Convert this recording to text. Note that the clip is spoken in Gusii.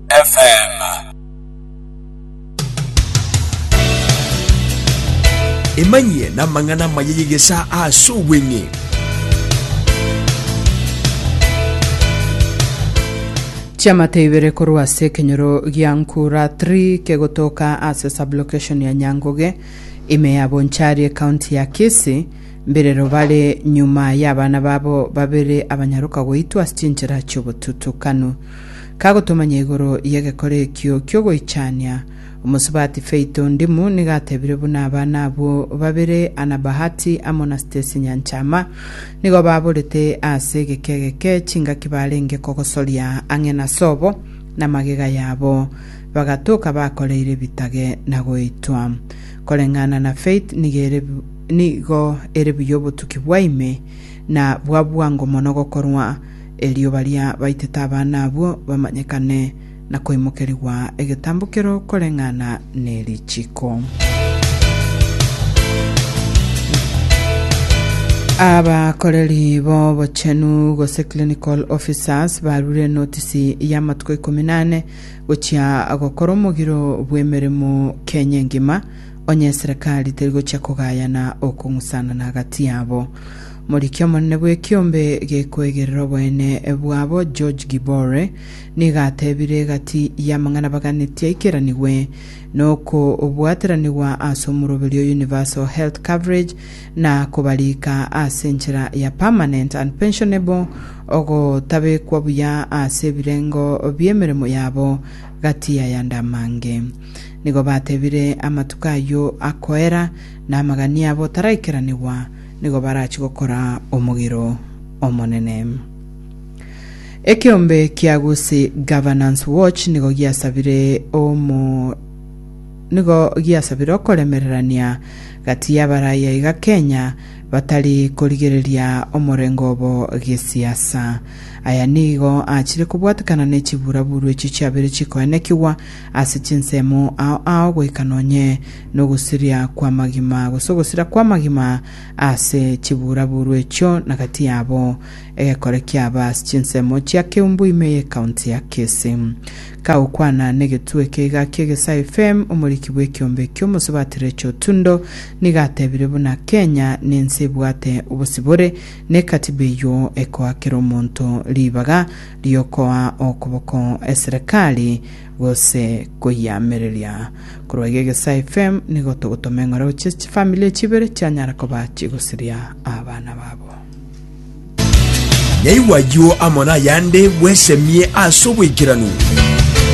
FM. Emanyie n'amang'ana amaya y'egesaa ase obweng'e. Chiamate ibere korwa ase ekenyoro gia Nkura 3 kegotoka ase sublocation ya Nyangoge ime ya Bonchari ekaunti ya Kisii mbirero bare nyuma y'abana babo babere abanyaroka goitwa ase chinchera chi'obotutukanu. Kagotomanya igoro y'egekore ekio ki'ogoichania, omosubati Feito Ndimu nigo atebire buna abana abwo babere Anna Bahati amo na Stacy Nyanchama nigo baborete ase egeke egeke chingaki barenge kogosoria ang'e na sobo na magega yabo bagatoka bakoreire ebitage na goitwa. Koreng'ana na Faith nigo ere nigo ere buya obotuki bwa ime na bwa bwango mono gokorwa erio baria baitete abana abwo bamanyekane, na koimokerigwa egetambokero koreng'ana ne richiko. Abakoreri b'obochenu gose clinical officers barure notisi y'amatuko ikomi nane gochia gokora omogiro bw'emeremo Kenya engima, onye eserekari teri gochia kogayana okong'usana na agati yabo. Moriki omonene bw'ekiombe gekwegerera oboene bwabo George Gibore nigo atebire egati y'amang'ana baganetie aikeranigwe nokobwateranigwa ase omoroberi o Universal Health Coverage na kobariika ase enchera ya permanent and pensionable ogotabekwa buya ase ebirengo bi'emeremo yabo gati y'ayande amange. Nigo batebire amatuko ayio akoera na amagani abo taraikeranigwa nigo barachie gokora omogiro omonene. Ekeombe kia Gusii Governance Watch nigo giasabire omo nigo giasabire okoremererania gati y'abaraiya iga Kenya batari korigereria omorengo obo gesiasa. Aya nigo achire kobwatekana ne chiburaburu echi chiabere chikoenekigwa Ase chinsemo ao ao goika nonye nogosiria kw'amagima, gose ogosira kw'amagima ase chibuura-buuru echio na gati yabo. Egekore kiaba ase chinsemo chia Keumbu ime y'ecounty ya Kisii. Kagokwana n'egetwe eke iga kia Egesae FM, omoriki bw'ekiombe ekio Omosubati Rachel Otundo nigo atebire buna Kenya nense ebwate obosibore, ne ekatiba eyio ekoakera omonto ribaga riokoa okoboko eserekari gose koyiamereria. Korwa iga Egesae FM nigo togotoma eng'ora gochia ase chifamili echi ibere chianyara koba chigosiria abana babo. Naigwa ayio amo nayande bwesemie ase obwaikeranu.